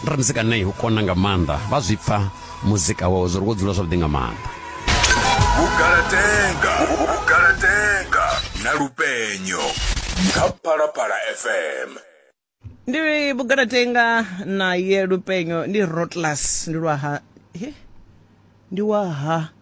ra muzika nei u kona nga maanḓa vha zwi pfa muzika wawe zwo ri wo dzula zwavhuḓi nga maanḓa vhugalatenga vhugalatenga na lupenyo kha phalaphala fm ndi vhugalatenga na ye lupenyo ndi rotlas ndi lwaha ndi waha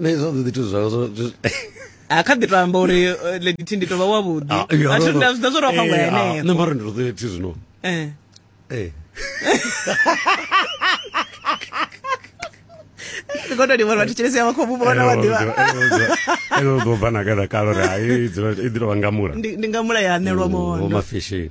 nṋe zwa ḓi zwithu zwawe zwo a kha ḓi to amba uri eh, lady thi ndi to vha wavhuḓi ah, a thi nda zwo ro fhangwa eh, ah, henefho nṋe mara ndi ro ḓi zwino eh eh kono ndi vhona thetshelesi yavho khomu vhona wa ḓivha ene u ḓo bva na kada kalo ri hai i ḓi tovha ngamula ndi ngamula ya anelwa mondo mafishini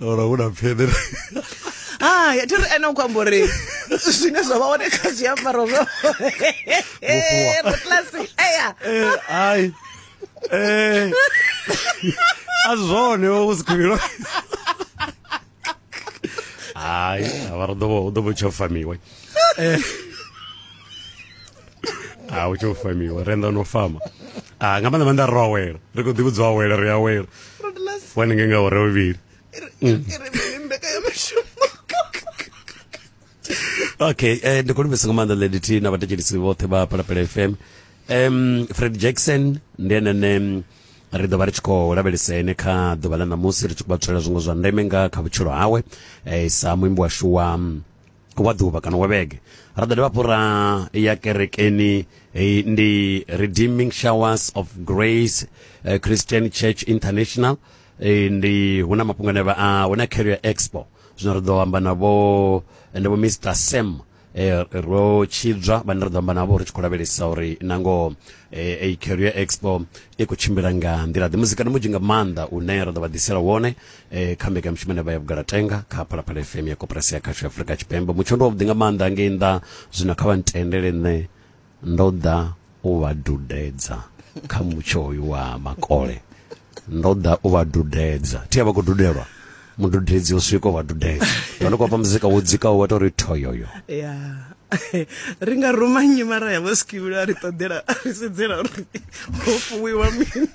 ora hu na pfeḓere hai ah, thi ri ene u khou amba uri zwine zwa vha hone kha zwiambaro zwo rotlasi eya hai eh, eh. a zwone wo ku sikhuvhilo hai avha ri ḓovha u ḓovha u tsho famiwe eh. a u tsho famiwe renda no fama ah nga maanḓa maanḓa ri ro awela ri khou ḓi vhudzwa awela ri awela wani nge nga ore vhavhili okay eh, ndi khou livhisa nga maanḓa lady t na vhathetshelisi vhoṱhe vha palapela fm um fred jackson ndi enene ri ḓo vha ri tshi khou lavhelesa ene kha ḓuvha ḽa ṋamusi ri tshi khou vha tswela zwiṅwe zwa ndeme nga kha vhutshilo hawe eh, sa muimbi washu wa wa ḓuvha kana wa vhege ra ḓo dovha hafhu ra ya kerekeni eh, ndi redeeming showers of grace eh, christian church international eh, ndi hu na mafhungo ane vha a hu na carrier expo zwino ri ḓo amba navho ende vho mr sam eh, ro tshidzwa vhane ri ḓo amba navho ri tshi khou lavhelesa uri nangoho eh, eh, carrier expo i khou tshimbila nga nḓila ḓe muzikani munzhi nga maanḓa une ra ḓo vha ḓisela wone eh, kha mbekanyamushumo ine vha ya vhugalatenga kha phalaphala fm ya koporasi ya khasho ya afurika tshipembe mutsho ndi wavhuḓi nga maanḓa ngei nnḓa zwino kha vha ntendele nṋe ndo ḓa u vha dudedza kha mutsho uyu wa makole ndo ḓa u vha dudedza thi a vha khou dudelwa mududedzi u swika u vha dudedza ndi khou fha muzika wo dzikaho wa tou ri thoyoyo yeah. ri nga ruma nnyi mara ya vho skivhilo a ri ṱoḓela a ri sedzela uri ho fuwiwa mini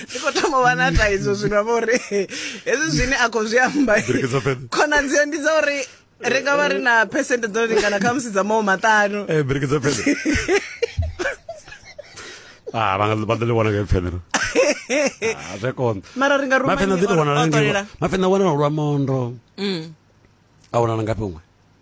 ndi khou thoma vha na thaidzo zwino vha uri hezwi zwine a khou zwi amba khonadzeo ndi dza uri ri nga vha ri na phesente dzo lingana kha musi dza mawo maṱanu eh, Ah, van van le wana ke fenero. Ah, re kon. Mara ringa ruma. Ma fenero le wana le. Ma fenero wana lwa mondo. Mm. A wana nga pengwe.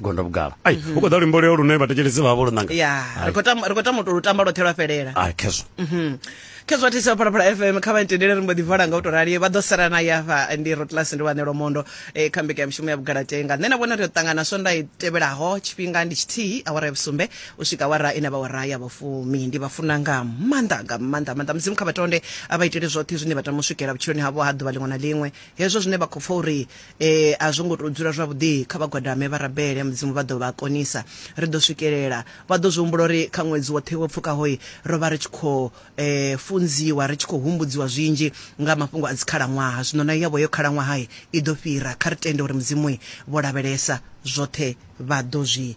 gondo vhugala ai mhm. u khou ḓa luimbo leo lune vhathetshelesi vha vha vho lunanga ya ri khou tamba ri khou tamba lu tamba lwoṱhe lwa fhelela ai khezwo mhm. khezwo thisi wa phalaphala fm kha vha ntendele ri mbo ḓi vala nga u to rali vha ḓo sala na yafa ndi rotlas ndi wanelo mondo e, kha mbeka ya mushumo ya vhugalatenga nṋe na vhona ri yo ṱangana swonda i tevhelaho tshifhinga ndi tshithihi awara ya vhusumbe u swika wara ine vha wara ya vhufumi ndi vha funa nga maanḓa nga maanḓa maanḓa mudzimu kha vhatonde a vha itele zwoṱhe zwine vha tama u swikela vhutshiloni havho ha ḓuvha liṅwe na liṅwe hezwo zwine vha khou pfa uri e a zwo ngo tou dzula zwavhuḓi kha vhagwadame vha rabele mudzimu vha ḓo vha konisa ri ḓo swikelela vha ḓo zwi humbula uri kha ṅwedzi woṱhe wo pfukahoyi ro vha ri tshi khou um funziwa ri tshi khou humbudziwa zwinzhi nga mafhungo a dzikhalaṅwaha zwino na yavho yo khalaṅwaha i ḓo fhira kha ri tende uri mudzimu vho lavhelesa zwoṱhe vha ḓo zwi